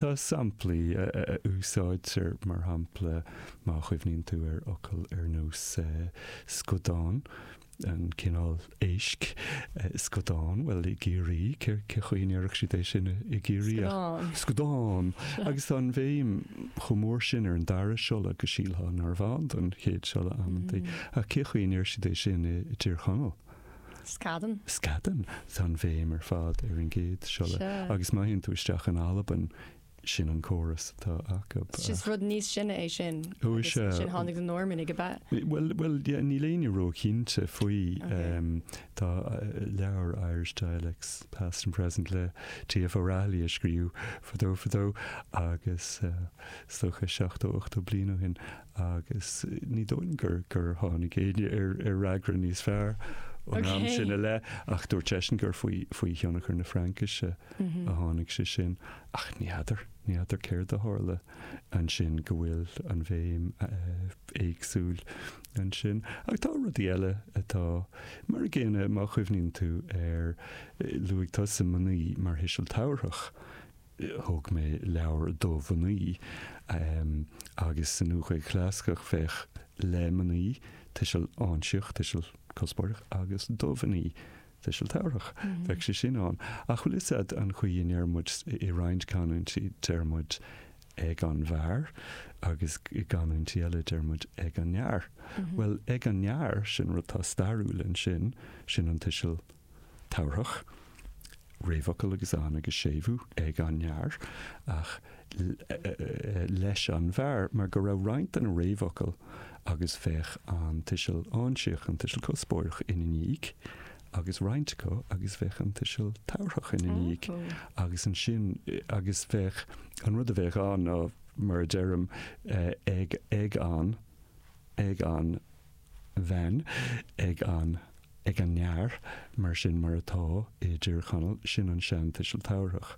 Tá samplaí a úsáidtear, mar shampla, má chuimhníonn tú ar fhocal ar nós scadán, an cineál éisc, scadán, bhuel, i gCiarraí, cé chaoi a ndéarfadh siad é sin i gCiarraí ach. Scadán. Scadán. Agus tá an bhéim chomh mór sin ar an dara siolla go sílfeá narbh ann don chéad siolla amantaí, ach cé chaoi a ndeir siad é sin i dTír Chonaill? Scadán. Scadán. Tá an bhéim ar fad ar an gcéad siolla Seo. agus má théann tú isteach in Albain, sin an córas atá acu. Is ach. rud níos sine é sin Ó, is agus ea. ansin tháinig na Normannaigh ab ea? Bhuel, bhuel, yeah, níl éinne ró-chinnte faoi. Ok. Em, tá leabhar Irish Dialects, Past and Present le TF O'Rahilly a scríobh fadó, fadó, agus, eh, is dócha, seachtó, ochtó bliain ó shin, agus ní dóigh liom gur tháinig éinne ar fhreagra níos fearr ón am sin i leith, ach dúirt seisean gur faoi thionchar na Fraincise a tháinig sé sin. Ach ní fheadar, ní fheadar céard a tharla ansin go bhfuil an bhéim éagsúil ansin. Ach tá rudaí eile atá mar an gcéanna, má chuimhníonn tú ar, luaigh tusa mnaoi mar thuiseal tabharthach thug mé leabhar do mhnaoi agus sa Nua-Ghaeilge Chlasaiceach bheadh le mnaoi tuiseal áinsíoch, tuiseal cuspóireach, agus do mhnaoi, tuiseal tabharthach, bheadh sé sin ann. Ach bhfuil 'fhios a'd an chaoi a ndeir muid, i roinnt canúintí deir muid ag an bhfear agus i gcanúintí eile deir muid ag an fhear. Bhuel ag an fhear, sin rud atá stairiúil ansin, sin an tuiseal tabharthach, réamhfhocal agus an agus séimhiú ag an fhear, ach leis an bhfear, mar go raibh roinnt de na réamhfhocail agus bheadh an tuiseal áinsíoch, an tuiseal cuspóireach, ina ndiaidh, agus roinnt acu agus bheadh an tuiseal tabharthach ina ndiaidh, agus ansin agus bheadh an rud a bheadh ann ná, mar a deirim, ag an, ag an. bhean ag an ag an fhear mar sin mar atá i dTír Chonaill, sin an seantuiseal tabharthach,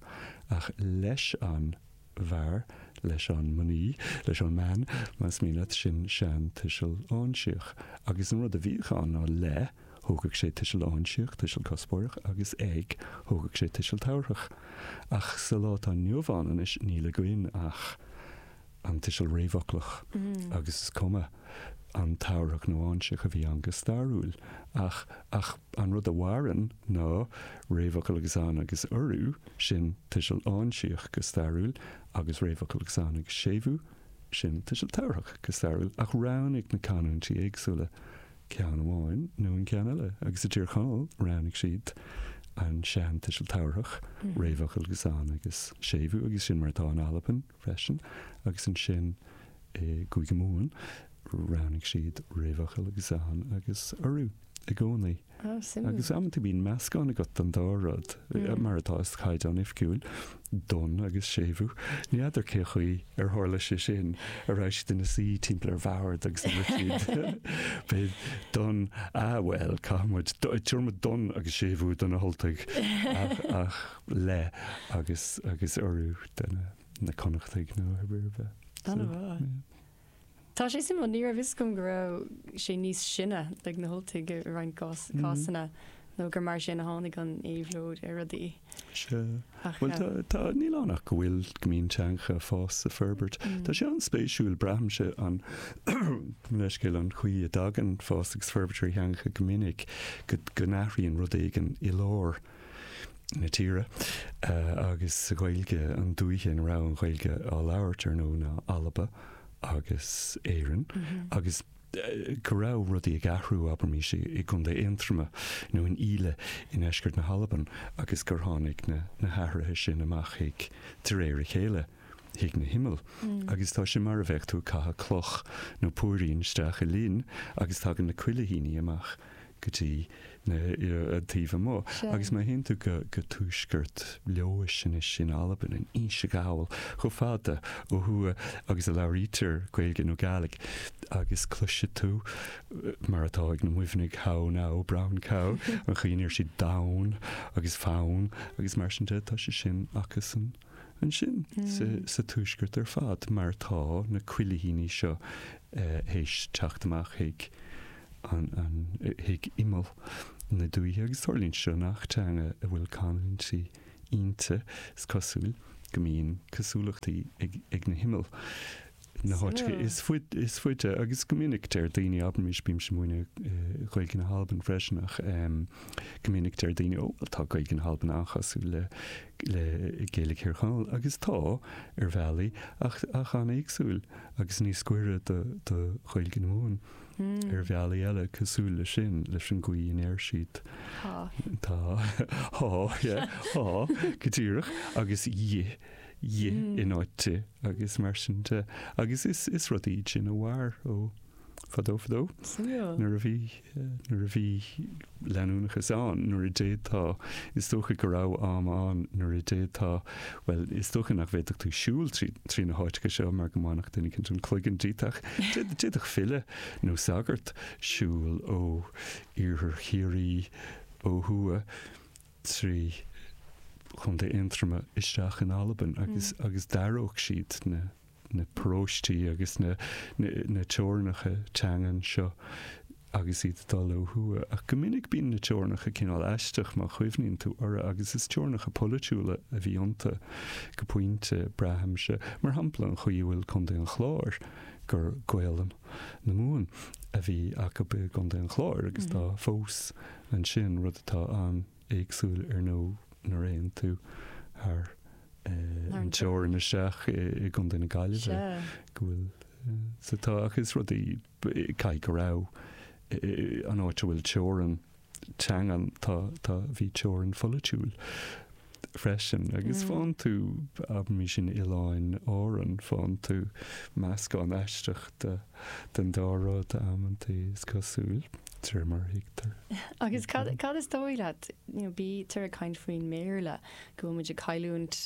ach leis an bhfear, leis an mnaoi, leis an mbean, más mian leat, sin seantuiseal áinsíoch. Agus an rud a bhíodh ann ná le, thógadh sé tuiseal áinsíoch, tuiseal cuspóireach, agus ag, thógadh sé tuiseal tabharthach. Ach sa lá atá inniu ann anois, níl againn ach. an tuiseal réamhfhoclach agus is cuma an tabharthach nó áinsíoch a bhí ann go stairiúil ach ach an rud a mhaireann ná réamhfhocal agus an agus urú, sin tuiseal áinsíoch go stairiúil, agus réamhfhocal agus an agus séimhiú, sin tuiseal tabharthach go stairiúil, ach roghnaigh na canúintí éagsúla ceann amháin nó an ceann eile agus i dTír Chonaill roghnaigh siad an sean-tuiseal tabharthach, réamhfhocal agus an agus séimhiú, agus sin mar atá in Albain. freisin, agus ansin i gCúige Mumhan roghnaigh siad réamhfhocal agus an agus urú i gcónaí. Ah, suimiúil. Agus amanta bíonn meascán agat den dá rud, mar atá sa chaighdeán oifgiúil, don agus séimhiú. Ní fheadar cén chaoi ar tharla sé sin, an raibh siad ina suí timpeall ar bhord agus ar siad beidh don, ah bhuel, caithfidh muid, tabharfaidh muid don agus séimhiú do na hUltaigh, ach, ach. leis an agus urú do na na Connachtaigh nó ar bith. Ana mhaith. Ie. Tá sé suimiúil, ní raibh a fhios agam go raibh sé níos sine ag na hUltaigh i roinnt gcás cásanna nó gur mar sin a tháinig an éabhlóid ar rudaí. Sea. Ach Bhuel tá tá níl ann ach go bhfuil go mbíonn teangacha ag fás is ag forbairt. Tá sé an-spéisiúil braithimse gabh mo leithscéal an chaoi a dtagann fás agus forbairt ar theangacha go minic go go n-athraíonn rud éigin i lár. na tíre agus sa Ghaeilge an dúiche ina raibh an Ghaeilge á labhairt ar ndóigh ná Alba agus Éirinn agus go raibh rudaí ag athrú abraimis i gContae Aontroma nó in Íle i ndeisceart na hAlban agus gur tháinig na hathruithe sin amach chuig de réir a chéile chuig na himill agus tá sé mar a bheadh tú ag caitheamh cloch nó póirín isteach i linn agus tagann na cuilithíní amach go dtí na, an taobh amuigh. Agus má théann tú go, go tuaisceart Leodhais anois in Albain, in Inse Ghall, chomh fada ó thuaidh agus a labhraítear Gaeilge nó Gàidhlig agus cloisfidh tú, mar atá ag na Muimhnigh, how now, brown cow, an chaoi a ndeir siad donn agus fonn agus mar sin de, tá sé sin acusan ansin sa, sa tuaisceart ar fad mar tá na cuilithíní seo théis teacht amach chuig an chuig imeall na dúiche agus tarlaíonn seo i ngach teanga a bhfuil canúintí ionta, is cosúil go mbíonn cosúlachtaí ag na himeall na háiteacha is faide agus go minic deir daoine, abraimis bímse ag múineadh Ghaeilge na hAlban freisin ach go minic deir daoine ó bhuel tá Gaeilge na hAlban an-chosúil le Gaeilge Thír Chonaill agus tá ar bhealaí eile an-éagsúil agus níos gaire do Ghaeilge na Mumhan. Ar bhealaí eile cosúil leis sin, leis an gcaoi a ndeir siad tá, thá, yeah, thá, go díreach, agus dhi, dhi, in áit di, agus mar sin de. Agus is, is rud iad sin a mhair ó fadó, fadó, nuair a bhí, nuair a bhí leanúnachas ann nuair a d'fhéadfá, is dócha go raibh am ann nuair a d'fhéadfá, bhuel, is dócha nach bhféadfadh tú siúl trí trí na háiteacha seo mar go mbainfeadh duine éicint an cloigeann díot ach d'fhéadfadh file nó sagart siúl ó iarthar Chiarraí ó thuaidh trí Chontae Aontroma isteach in Albain agus agus d'aireodh siad na na paróistí agus na na teorainneacha teangan seo agus iad ag dul ó thuaidh. Ach go minic bíonn na teorainneacha cineál aisteach má chuimhníonn tú orthu agus is teorainneacha polaitiúla a bhí iontu go pointe, braithimse. Mar shampla, an chaoi a bhfuil Contae an Chláir, gur Gaolainn na Mumhan a bhí acu i gContae an Chláir agus atá fós ansin, rud atá an. éagsúil ar ndóigh nuair a théann tú thar an teorainn isteach i gContae na Gaillimhe go bhfuil sa tá ach is rudaí caithfidh go raibh an áit a bhfuil teorainn teangan tá tá bhí teorainn pholaitiúil freisin agus faigheann tú abraimis in Oileáin Árann faigheann tú meascán aisteach de den dá rud amantaí is cosúil Agus cad, cad is dóigh leat, you know, bítear ag caint faoin mBéarla, go bhfuil muid ag cailliúint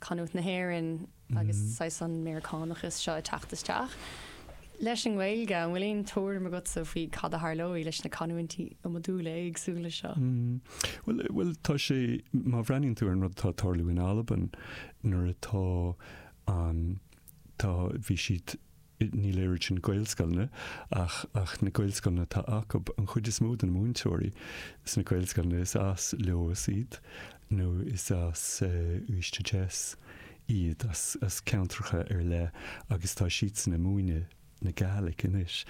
canúint na hÉireann agus saghas an Méiriceánachas seo ag teacht isteach. Leis an nGaeilge, an bhfuil aon tuairim agatsa faoi cad a tharlóidh leis na canúintí iomadúla éagsúla seo? Bhuel, bhuel, tá sé, má bhreathnaíonn tú ar an rud atá ag tarlú in Albain, mar atá an, tá, bhí siad, Ní déarfainn Gaelscoileanna ach ach na Gaelscoileanna atá acu. An chuid is mó de na múinteoirí sna Gaelscoileanna is as Leodhas iad nó is as Uibhist a Deas iad, as as ceantracha ar leith agus tá siadsan ag múineadh na Gaelic anois.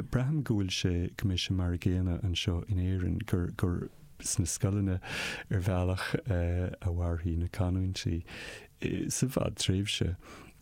Braithim go bhfuil sé go mbeidh sé mar an gcéanna anseo in Éirinn gur gur sna scoileanna ar bhealach a mhairfidh na canúintí sa bhfadtréimhse.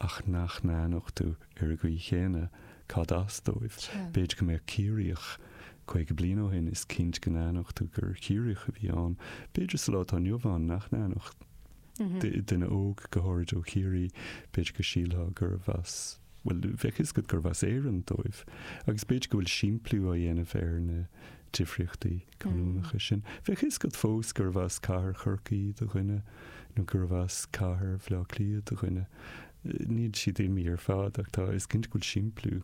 ach nach n-aithneodh tú ar an gcaoi chéanna cad as dóibh. B'fhéidir go mbeadh Ciarraíoch caoga bliain ó shin, is cinnte go n-aithneodh tú gur Chiarraíoch a bhí ann. B'fhéidir sa lá atá inniu ann nach n-aithneodh tú duine óg, go háirid ó Chiarraí, b'fhéidir go sílfeá gurbh as, bhuel, bheadh a fhios agat gurbh as Éirinn dóibh. Agus b'fhéidir go bhfuil simpliú á dhéanamh ar na difríochtaí. canúnacha sin. Bheadh fhios agat fós gurbh as cathair Chorcaí do dhuine nó gurbh as cathair Bhleá Cliath do dhuine. Níl siad imithe ar fad ach tá, is cinnte go bhfuil simpliú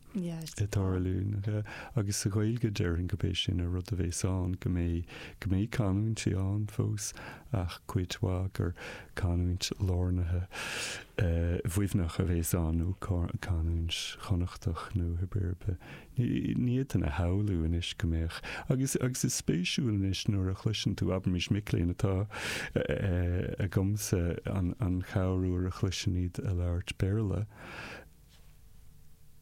ag tarlú agus sa Ghaeilge déarfainn gurb é sin an rud a bhéas ann, go mbeidh, go mbeidh canúintí ann fós ach cuid mhaith gur canúint lárnaithe Mhuimhneach a bhéas ann nó canúint Chonnachtach nó pé ar bith. Ní fhéadfainn a shamhlú anois go mbeadh, agus is spéisiúil anois nuair a chloiseann tú, abraimis, mic léinn atá agamsa sa Chabhán nuair a chloisim iad ag labhairt Béarla,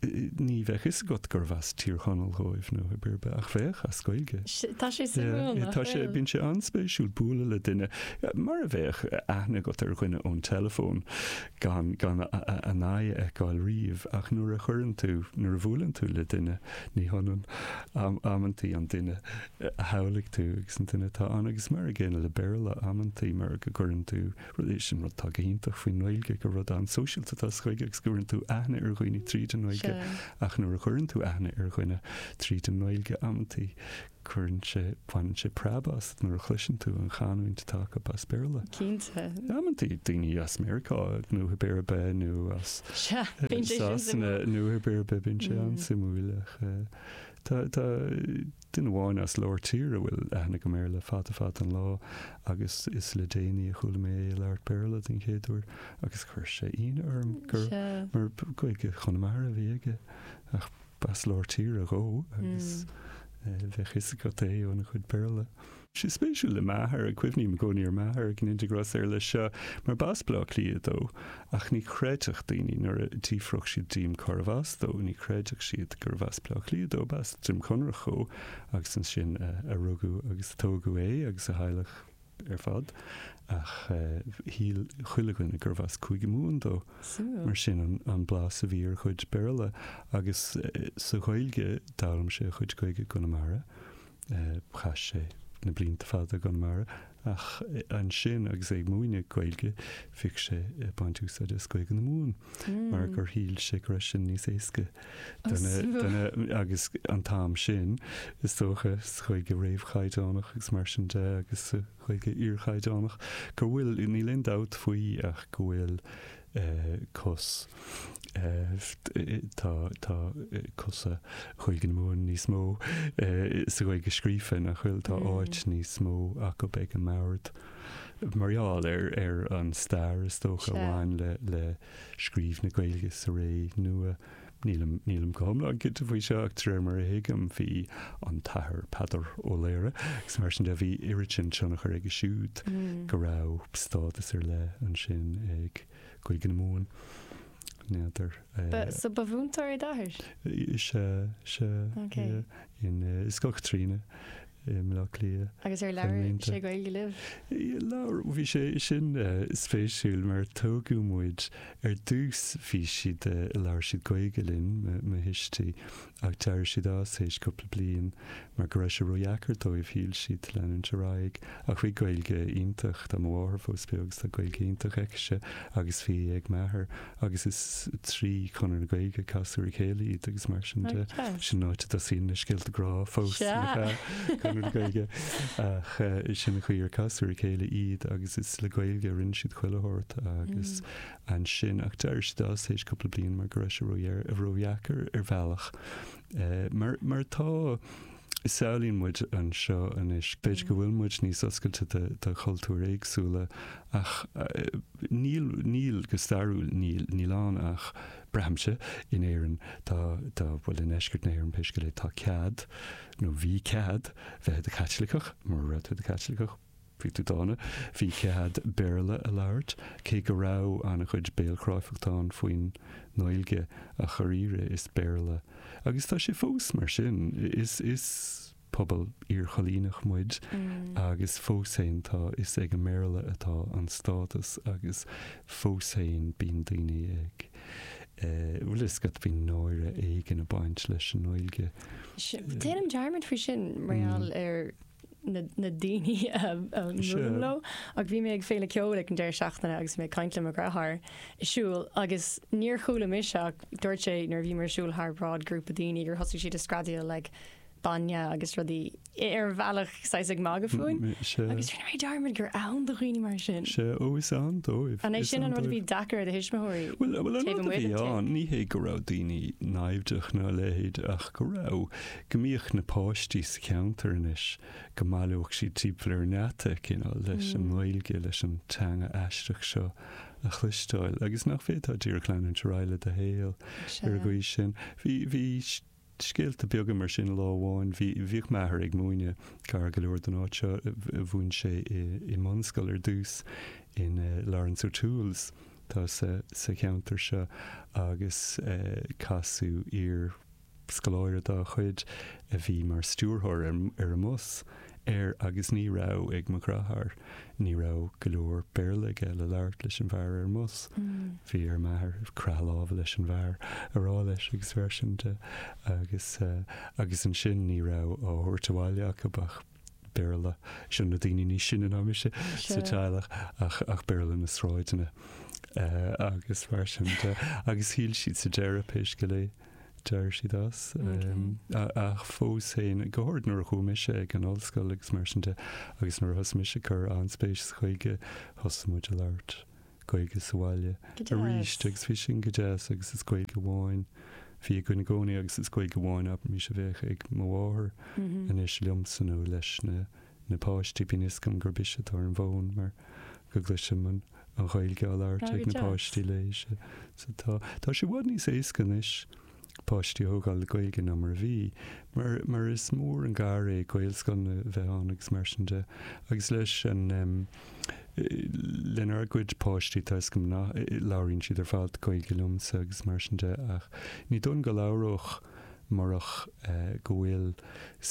ní bheadh fhios agat gurbh as Tír Chonaill dhóibh nó pé ar bith, ach bheadh, as Gaeilge. Tá sé suimiúil nach bhfuil? Bíonn sé an-spéisiúil bualadh le duine, mar a bheadh aithne agat ar dhuine ón teileafón, gan gan a n-aghaidh a fheiceáil riamh, ach nuair a chuireann tú, nuair a bhuaileann tú le duine, ní hionann amantaí an duine a shamhlaigh tú agus an duine atá ann. Agus mar an gcéanna le Béarla, amantaí mar go gcuireann tú, sin rud atá go hiontach faoin nGaeilge, gur rud an-sóisialta atá sa Ghaeilge agus go gcuireann tú aithne ar dhaoine tríd an nGaeilge, ach nuair a chuireann tú aithne ar dhuine tríd an nGaeilge, amantaí, Cuireann sé, baineann sé preab asat nuair a chloiseann tú an chanúint atá acu as Béarla. Cinnte. Amantaí daoine as Meiriceá nó pé ar bith nó as Sasana nó pé ar bith, bíonn sé an-suimiúil ach tá duine amháin as lár tíre a bhfuil aithne agam air le fada fada an lá agus is le déanaí a chuala mé é ag labhairt Béarla den chéad uair agus chuir sé ionadh orm mar Gaeilge Chonamara a bhí aige ach B'as lár tíre dhó agus bheadh fhios agat é óna chuid Béarla. Tá sé spéisiúil le m'athair, ag cuimhneamh i gcónaí ar m'athair agus mé ag déanamh iontais leis seo, mar b'as Bleá Cliath dó, ach ní chreidfeadh daoine nuair a d'fhiafródh siad de cárbh as dó, ní chreidfeadh siad gurbh as Bleá Cliath dó, b'as Droim Conrach dhó agus ansin a rugadh agus a tógadh é agus a theaghlach. ar fad, ach shíl chuile dhuine gurbh as Cúige Mumhan dó. Mar sin an blas a bhí ar a chuid Béarla. Agus sa Ghaeilge, d'fhoghlaim sé a chuid Gaeilge i gConamara. Chaith sé na blianta fada i gConamara. Ach ansin agus é ag múineadh Gaeilge, bhíodh sé ag baint úsáide as Gaeilge na Mumhan mar gur shíl sé go raibh sin níos éasca. Agus an t-am sin, is dócha, sa Ghaeilge réamhchaighdeánach agus mar sin de, agus sa Ghaeilge iarchaighdeánach, go bhfuil, níl aon dabht faoi ach go bhfuil cos, tá, tá cosa Ghaeilge na Mumhan níos mó sa Ghaeilge scríofa, nach bhfuil, tá áit níos mó acu ag an mbord mar gheall ar, ar an stair, is dócha, a bhain le, le. scríobh na Gaeilge sa ré nua. Nílim go hiomlán cinnte faoi seo ach de réir mar a thuigim bhí an tAthair Peadar Ó Laoghaire agus mar sin de bhí oiread sin tionchar aige siúd, go raibh stádas ar leith ansin ag Gaeilge na Mumhan. N'fheadar. So ba mhúinteoir é d'athair? Is ea, is ea. Is Scoil Chaitríona. i mBleá Cliath. Agus ar labhair sé Gaeilge libh? Labhair, bhí sé, sin spéisiúil mar tógadh muid, ar dtús bhí siad, labhair siad Gaeilge linn, mo thuistí, ach d'éirigh siad as théis cúpla bliain mar go raibh sé ródheacair dóibh, shíl siad, leanúint ar aghaidh, ach bhí Gaeilge iontach, tá mo mháthair fós beo, agus tá Gaeilge iontach aici-se, agus bhí ag m'athair, agus is trí Chonradh na Gaeilge, casadh ar a chéile iad agus mar sin de. Sin an áit a dtosaíonn na scéalta grá fós, Conradh na Gaeilge, ach sin an chaoi ar casadh ar a chéile iad agus is le Gaeilge a rinne siad chuile shórt agus ansin, ach d'éirigh siad as tar éis cúpla bliain mar go raibh sé ródheacair ar bhealach mar atá. samhlaíonn muid anseo anois. B'fhéidir go bhfuil muid níos oscailte do chultúir éagsúla ach níl, níl, go stairiúil níl. Níl ann ach, braithimse, in Éirinn, tá, tá, bhuel i ndeisceart na hÉireann pé scéal é, tá cead, nó bhí cead, bheith i do Chaitliceach, mura raibh tú i do Chaitliceach, Bhí tú dána. Bhí cead Béarla a labhairt, cé go raibh an-chuid béalchráifeachta ann faoin nGaeilge, ach dháiríre is Béarla, agus tá sé fós mar sin, is, is pobal iarchoilíneach muid agus fós féin tá, is ag an mBéarla atá an stádas agus fós féin bíonn daoine ag eh, bhfuil 'fhios agat, bíonn náire éigin a' baint leis an nGaeilge. Déanaim dearmad faoi sin mar gheall ar. na daoine a mbuailim leo, ach bhí mé ag féile ceoil ag an deireadh seachtaine agus bhí mé ag caint le mo dheartháir ag siúl agus níor chuala mise ach dúirt sé nuair a bhí muid ag siúl thar bráid grúpa daoine gur thosaigh siad ag screadaíl like bainne agus rudaí ar an bhealach saghas ag magadh fúinn agus rinne mé dearmad gur ann do dhaoine mar sin. Sea, ó is ann dóibh. An é sin an rud a bhí deacair ar do thuismitheoirí? Bhuel, an rud a bhí ann ní hé go raibh daoine naimhdeach ná a leithéid ach go raibh go mbíodh na páistí sa cheantar anois, go mbaileodh siad timpeall ar an ngeata, cineál, leis an nGaeilge, leis an teanga aisteach seo a chloisteáil, agus nach bhféadfá díreach leanúint ar aghaidh le do shaol ar an gcaoi sin. Bhí, bhí scéalta beaga mar sin lá amháin, bhí, bhíodh m'athair ag múineadh gar go leor don áit seo, mhúin sé i, i mbunscoil ar dtús in eh, Laurence O'Toole's atá sa, sa cheantar seo agus eh, casadh iar, Scoláire dá chuid a bhí mar stiúrthóir ar an mbus, ar, agus ní raibh ag mo dhreatháir, ní raibh go leor Béarla aige le labhairt leis an bhfear ar an mbus. Bhí ar m'athair croitheadh láimhe leis an bhfear a rá leis agus mar sin de agus, agus ansin ní raibh á thabhairt abhaile acu ach Béarla, seo na daoine níos sine ná mise sa teaghlach, ach, ach Béarla na sráideanna agus mar sin de agus shíl siad sa deireadh, pé scéal é, d'éirigh siad as. Ach fós féin, go háirid nuair a chuaigh mise ag an ollscoil agus mar sin de, agus nuair a thosaigh mise cur an-spéis sa Ghaeilge, thosaigh muid ag labhairt Gaeilge sa bhaile arís agus bhí sin go deas agus is Gaeilge amháin bhí ag Cóilín i gcónaí agus is Gaeilge amháin, abraimis, a bheadh ag mo mháthair anois liomsa nó leis na na páistí, bíonn a fhios agam gurb ise atá ar an bhfón mar go gcloisim an Ghaeilge á labhairt ag na páistí léi. Tá sé i bhfad níos éasca anois páistí a thógáil le Gaeilge ná mar a bhí, mar is mór an gar é Gaelscoileanna a bheith ann agus mar sin de. Agus leis an, lenár gcuid páistí, tá a fhios agam nach, labhraíonn siad ar fad Gaeilge liomsa agus mar sin de ach ní dóigh liom go labhródh murach go bhfuil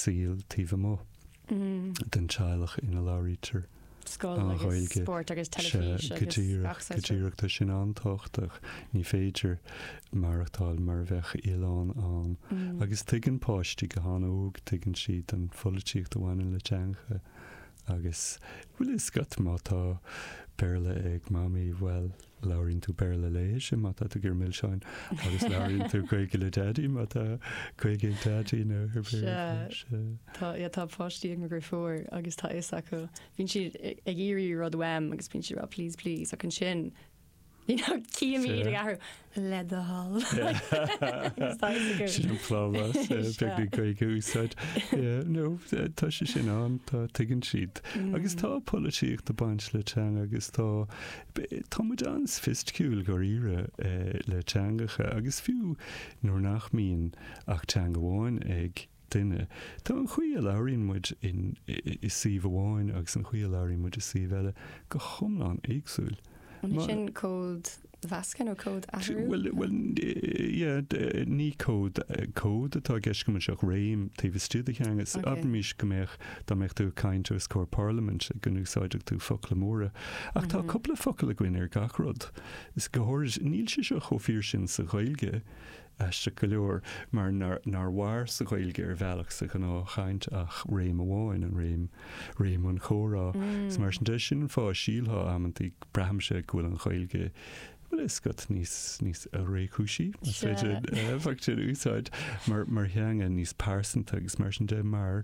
saol taobh amuigh. den teaghlach ina labhraítear an Ghaeilge. Sea, go díreach, go díreach. Tá sin an-tábhachtach. Ní féidir maireachtáil mar a bheadh oileán ann. Agus tuigeann páistí go han-óg, tuigeann siad an pholaitíocht a bhaineann le teangacha. Agus, bhfuil a fhios agat, má tá Béarla ag Mamaí, bhuel, Labhraíonn tú Béarla léise má tá tú ag iarraidh milseáin agus labhraíonn tú Gaeilge le Daidí má tá Gaeilge ag Daidí nó ar Béarla. Tá páistí an-ghéar agus tá fhios acu. Bíonn siad ag iarraidh rud uaim agus bíonn siad rá please please ach ansin you know cím iad ag athrú le do thoil. Sin an plámás beag na Gaeilge a úsáid. Nó tá sé sin ann, tá tuigeann siad. Agus tá polaitíocht ag baint le teanga agus tá Tá muid an-soifisticiúil, dháiríre, le teangacha, agus fiú nuair nach mbíonn ach teanga amháin ag duine, tá an chaoi a labhraíonn muid i suíomh amháin agus an chaoi a labhraíonn muid i suíomh eile go hiomlán éagsúil. An é sin códmheascadh nó códathrú? Bhuel, ní cód, cód atá i gceist agam anois ach réim taobh istigh de theanga. Abraimis go mbeadh Dá mbeadh tú ag caint os comhair parlaimint go n-úsáidfeadh tú focla móra. Ach tá cúpla focal againn ar gach rud. Is go háirid níl sé seo chomh fíor sin sa Ghaeilge, aisteach go leor, mar nár mhair sa Ghaeilge ar bhealach sa ghnáthchaint ach réim amháin, an réim, réim an chomhrá. Is mar sin de, sin an fáth a sílfeá amantaí, braithimse, go bhfuil an Ghaeilge, Bhuel, is sórt níos, níos réchúisí, más féidir an focal sin a úsáid, mar, mar theanga, níos pearsanta agus mar sin de, mar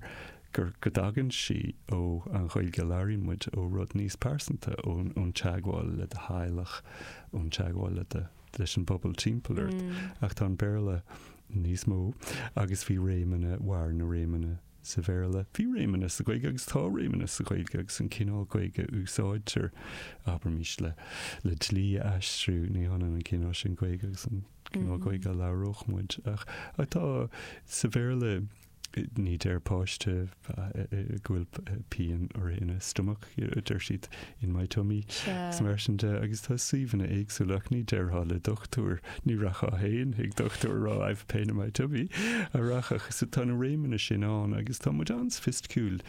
gur, go dtagann sí ó, an Ghaeilge a labhraíonn muid, ó rud níos pearsanta, ón, ón teagmháil le do theaghlach, ón teagmháil le do, leis an bpobal timpeall ort. Ach tá an Béarla níos mó agus bhí réimeanna, mhair na réimeanna Sa Bhéarla, bhí réimeanna sa Ghaeilge agus tá réimeanna sa Ghaeilge agus an cineál Gaeilge a úsáidtear, abraimís le le dlí a aistriú, ní hionann an cineál sin Gaeilge agus an cineál Gaeilge a labhródh muide. Ach ach tá, sa Bhéarla, ní deir páiste go bhfuil pian uirthi ina stomach. deir siad, in my tummy. Sea. Mar sin de, agus tá suíomhanna éagsúla ach ní déarfá le dochtúir, ní rachfá féin chuig dochtúir a rá I've pain in my tummy an rachfá. So tá na réimeanna sin ann agus tá muid an-soifisticiúil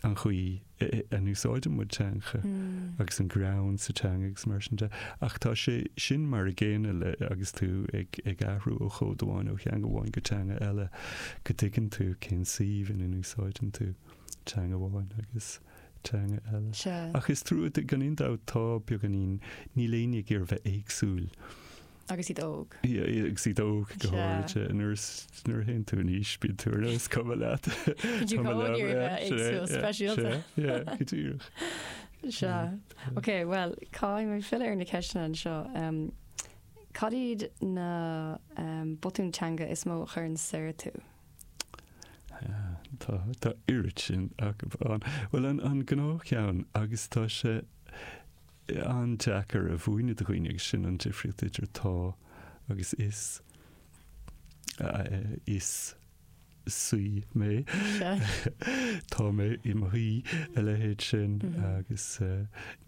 an chaoi a n-úsáideann muid teanga agus an greann sa teanga agus mar sin de. Ach tá sé sin mar a gcéanna le agus tú ag ag athrú ó chód amháin ó theanga amháin go teanga eile go dtuigeann tú cén suíomh ina n-úsáideann tú teanga amháin agus teanga eile. Sea. Ach is trua, gan aon dabht, tá beagáinín, níl éinne ag iarraidh a bheith éagsúil. Agus iad óg. agus iad óg, go háirithe. Sea. Nuair is, nuair a théann tú in aois, bíonn tú ar nós, is cuma leat, Bíonn tú ag iarraidh a bheith éagsúil, speisialta. Sea, go díreach. Sea. Ok, bhuel, caithfidh mé filleadh ar na ceisteanna anseo. Cad iad na botúin teanga is mó a chuireann soir tú? Tá, tá oiread sin acu ann. Bhuel, an, an gnáthcheann, agus tá sé an-deacair a mhúineadh do dhaoine, agus sin an difríocht idir tá agus is, is saoi mé, tá mé i mo shuí, a leithéid sin, agus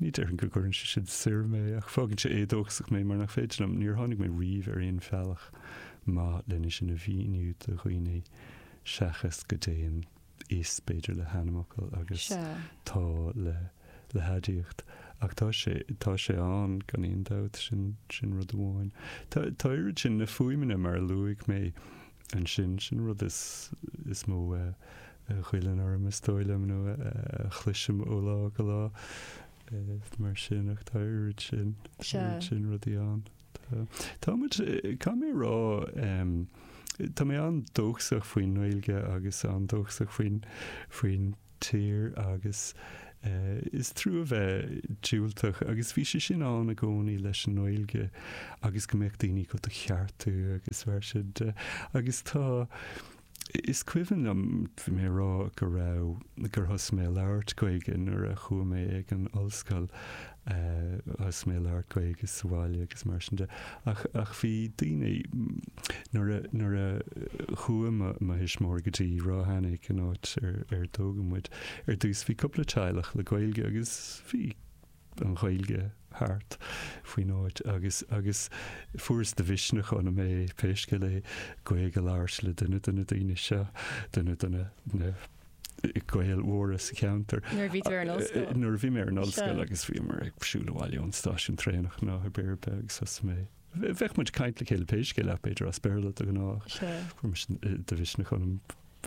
ní déarfainn go gcuireann sé sin soir mé, ach fágann sé éadóchasach mé mar nach féidir liom, níor tháinig mé riamh ar aon bhealach. maith lena sin a mhíniú do dhaoine seachas go dtéann is b'fhéidir le hainmfhocal agus Sea. tá le le haidiacht. Ach tá sé tá sé ann gan aon dabht, sin sin rud amháin. Tá tá oiread sin na fuaimeanna mar a luaigh mé ansin, sin an rud is is mó a a ghoilleann orm is dóigh liom nó a a chloisim ó lá go lá, eh, mar sin ach tá oiread sin Sea. oiread sin rudaí ann. Tá, tá muid, caithfidh mé a rá, tá mé an-dóchasach faoin nGaeilge agus an-dóchasach faoin, faoin tír agus is trua a bheith diúltach agus bhí sé sin ann i gcónaí leis an nGaeilge agus go mbeadh daoine go do cheartú agus mar sin de, agus tá, Is cuimhin liom mé ag rá go raibh, gur thosaigh mé ag labhairt Gaeilge nuair a chuaigh mé ag an ollscoil, thosaigh mé ag labhairt Gaeilge sa bhaile agus mar sin de. Ach, ach bhí daoine, nuair a, nuair a chuaigh mo, mo thuismitheoirí go dtí Ráth Eanaigh, an áit ar, ar tógadh muid, ar dtús bhí cúpla teaghlach le Gaeilge agus bhí, an Ghaeilge thart faoin áit agus agus fuaireas de mhisneach ionam é, pé scéal é, Gaeilge a labhairt le duine de na daoine seo, duine de na Gaeil mhóra sa cheantar. Nuair a bhí tú ar an ollscoil? Nuair a bhí mé ar an ollscoil agus bhíomar ag siúl abhaile ón stáisiún traenach ná a béir begus as mé. Bheadh muid ag caint le chéile pé scéal é b'fhéidir as Béarla de ghnáth. Fuair mise de mhisneach ionam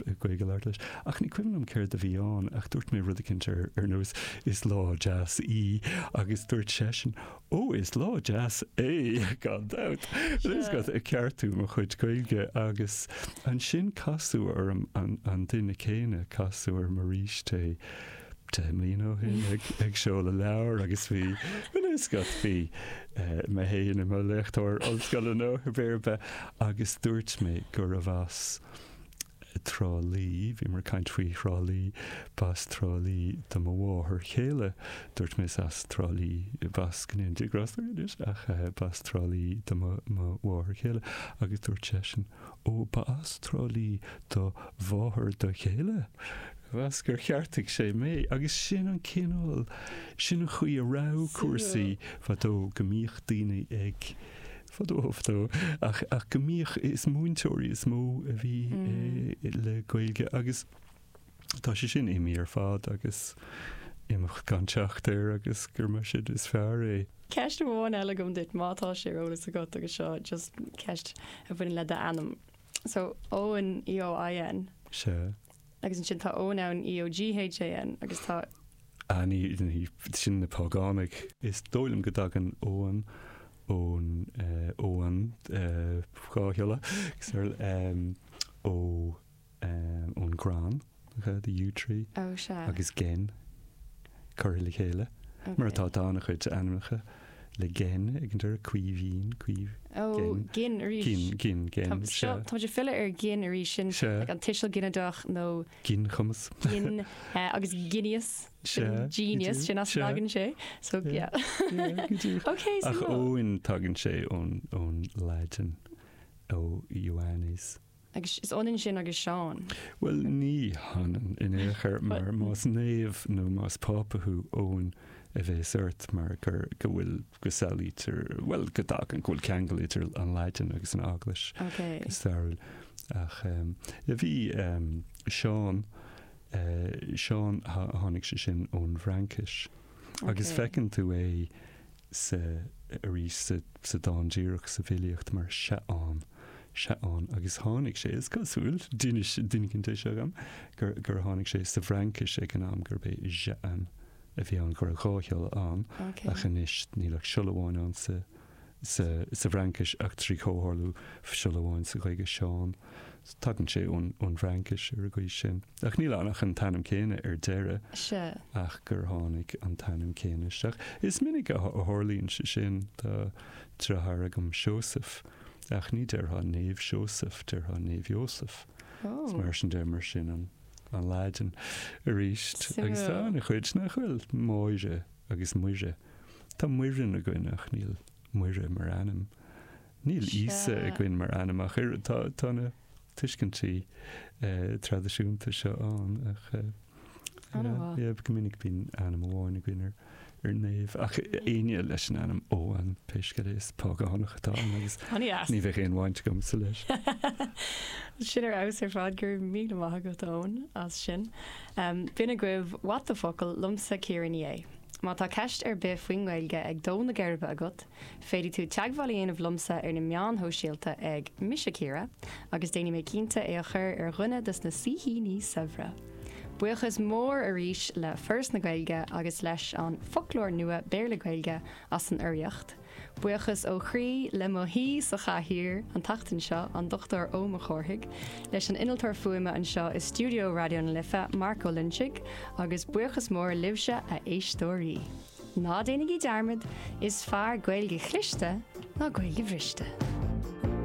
Gaeilge a labhairt leis. Ach ní cuimhin liom céard a bhí ann ach dúirt mé rud eicínt ar ar nós 'Is lá deas í' agus dúirt seisean 'Ó is lá deas é gan dabht'. Is é ag ceartú mo chuid Gaeilge agus ansin casadh orm an duine céanna, casadh orm arís é. 2 bhliain ó shin ag seoladh leabhair agus bhí an fhuascailt, bhí mé féin i mo léachtóir ollscoile nó pé ar bith agus dúirt mé gurb as Trá Lí, bhíomar ag caint faoi Thrá Lí, b'as Trá Lí do mo mháthair chéile, dúirt mé is as Trá Lí, b'as go ndéanfaidh Dia grásta uirthi anois, ach b'as Trá Lí do mo mháthair chéile agus dúirt seisean Ó b'as Trá Lí do mháthair do chéile? Mheas gur cheartaigh sé mé, agus sin an cineál, sin an chaoi a raibh cúrsaí fadó, go mbíodh daoine ag, fadó fadó, ach go mbíodh, is múinteoirí is mó a bhí le Gaeilge agus, Tá sé sin imithe ar fad agus imeacht gan teacht air agus gur mar sin is fearr é. Ceist amháin eile agam duit, má tá sé ar eolas agat, agus seo just ceist a bhaineann le d'ainm. So, Eoin, E-O-I-N. Sea. Agus ansin tá Eoghan ann, E-O-G-H-A-N, agus tá. Ah, ní, ní, sin na págánaigh. Is dóigh liom go dtagann Eoghan ón, eh, Eoghan, eh, dhá shiolla, so, eh, ó. ón gcrann, the yew tree, agus gin curtha le chéile, mar atá, tá an-chuid ainmneacha le gin ag an deireadh, Caoimhín, Caoimh, gin, gin, gin, gin, gin, seo. Tá muid ag filleadh ar gin arís, sin an tuiseal ginideach nó. Ginchumas. Gin agus geineas, genius, sin as tagann sé, so yeah. Ok, so. Ach Eoin tagann sé ón Laidin, ó Ioannes. Agus is ionann sin agus Seán. Bhuel, ní hionann in aon chor, mar más naomh nó más Pápa thú, Eoin a bhéas ort, mar gur, go bhfuil, go samhlaítear, bhuel, go dtagann, go bhfuil ceangal idir an Laidin agus an Eaglais. Ok. Go stairiúil. Ach ehm, a bhí ehm, Seán, eh, Seán, tháinig sé sin ón bhFraincis. Agus feiceann tú é, sa, arís sa, sa dán díreach sa bhfilíocht mar Seaán, Seaán, agus tháinig sé, is cosúil, d'inis, duine éicint é seo dhom, gur, gur tháinig sé sa bhFraincis ag an am gurb é Jean a bhí ann, go raibh dhá shiolla ann, ach anois níl ach siolla amháin ann sa, sa, sa bhFraincis ach trí chomhtharlú siolla amháin sa Ghaeilge, Seán. Tagann sé ón, ón bhFraincis ar an gcaoi sin. Ach níl ann ach an t-ainm céanna ar deireadh. Sea. Ach gur tháinig an t-ainm céanna isteach. Is minic a tharlaíonn sé sin. Tá deartháir agam, Seosamh, ach ní déarfá Naomh Seosamh, déarfá Naomh Iósaf. Is mar sin de, mar sin an Laidin arís. Agus tá ana-chuid nach bhfuil, Máire agus Muire. Tá Muireann againn ach níl Muire mar ainm. Níl Íosa againn mar ainm ach oiread. Tá na. tuiscintí traidisiúnta seo ann ach go minic bíonn ainm amháin againn ar naomh ach aoinne leis an ainm Eoghan pé scéal é is págánach atá ann agus ní bheadh aon bhaint agamsa leis. Sin ar fheabhas ar fad, go raibh míle maith agat Eoin as sin. B'in agaibh What the Focal liomsa Ciara Ní É. Má tá ceist ar bith faoin nGaeilge ag dó na geirbe agat, Féadfaidh tú teagmháil a dhéanamh liomsa ar na meáin shóisialta ag, Mise Ciara, agus déanfaidh mé cinnte é a chur ar dhuine dos na saoithíní saibhre! Buíochas mór arís le Foras na Gaeilge agus leis an Foclóir Nua Béarla-Gaeilge as an urraíocht. Buíochas ó chroí le mo shaoi sa chathaoir an tseachtain seo, an Dr Eoin Mac Cárthaigh, leis an innealtóir fuaime anseo i stiúideo Raidió na Life, Mark Ó Loinsigh, agus buíochas mór libhse, a éisteoirí! Ná déanaigí dearmad, is fearr Gaeilge chliste ná Gaeilge bhriste.